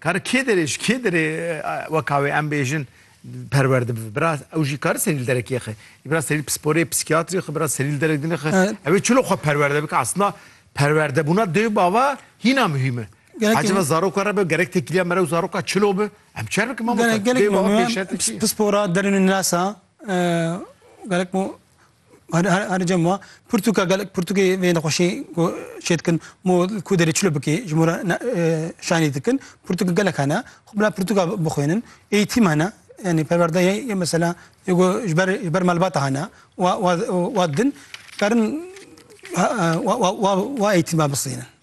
Kar kê derê ji kê derê weka wê em bêjin perwer dibi. Bira ew jî kar serî li derekê xe. Bira serî pisporê, psîkiyatrî xe, bira serî li derek dinê xe. Ew ê çilo xwe perwer debike. Aslında perwerdebûna dê û bava hîna muhîm e. Acaba zaroka re be gerek têkiliya me re û zaroka çilo be. Em çi bikim mamoste? Gelek gelek pispora derûnê nirasa gerek Her cem wa pirtûka gelek pirtûkê vê nexweşî ku çê dikin mû ku derê çilo bikê ji mû re şanî dikin pirtûk gelek hene xwe bila pirtûka bixwînin eğîtîm hene yanî perwerde yê yê mesela yê ku ji ber ji ber malbata hene wa wa wa din karin wa wa wa eğîtîma bisînin.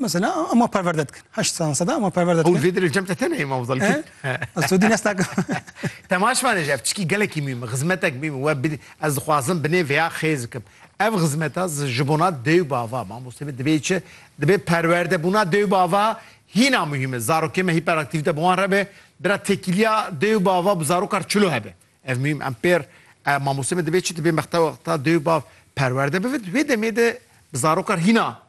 Mesela ama perverde dikin. Heşt sansada ama perverde dikin. Ew vê dirê cem te tenê Imam Zal. Sudî nesta. Temaş vane ji ev çikî gelekî mîm e, xizmetek mîm e. We bidî ez dixwazim bi nê vêya xêz bikim. Ev xizmeta ji bona dê û bava mamostê me dibê çi? Dibê perwerdebûna dê û bava hîna muhîm e. Zarokê me hîperaktîvîte bi wan re be. Bira tekîliya dê û bava bi zarokar çilo hebe. Ev mîm em pêr mamostê me dibê çi? Dibê mexta wexta dê û bav perwerde bibe. Di wê demê de bi zarokar hîna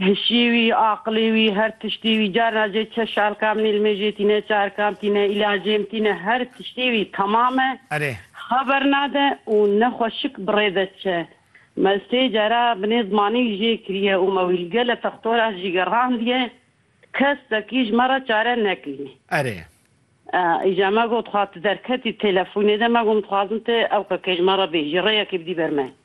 Hişî wî, aqilê wî, her tiştî wî, carna jê çeş şalkam nîl mê jê tîne, çarkam tîne, îlacêm tîne, her tiştî wî temam e. Erê. Xeber nade û ne xwe şik bi rê de diçe. Me sê cara binê zimanî jê kiriye û me wî li gele textora jî gerandiye. Kesekî ji me re çare nekiriye. Erê. Îja me got xwe tu derketî telefonê de me got dixwazim tu ew kekê ji me re bêjî rêyekê bidî ber me.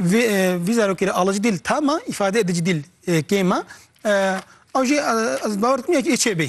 Vê vî zarokê re alac dîl tama îfade edic dîl kêma. Ew jî ez bawer dikim ya ki ê çêbê.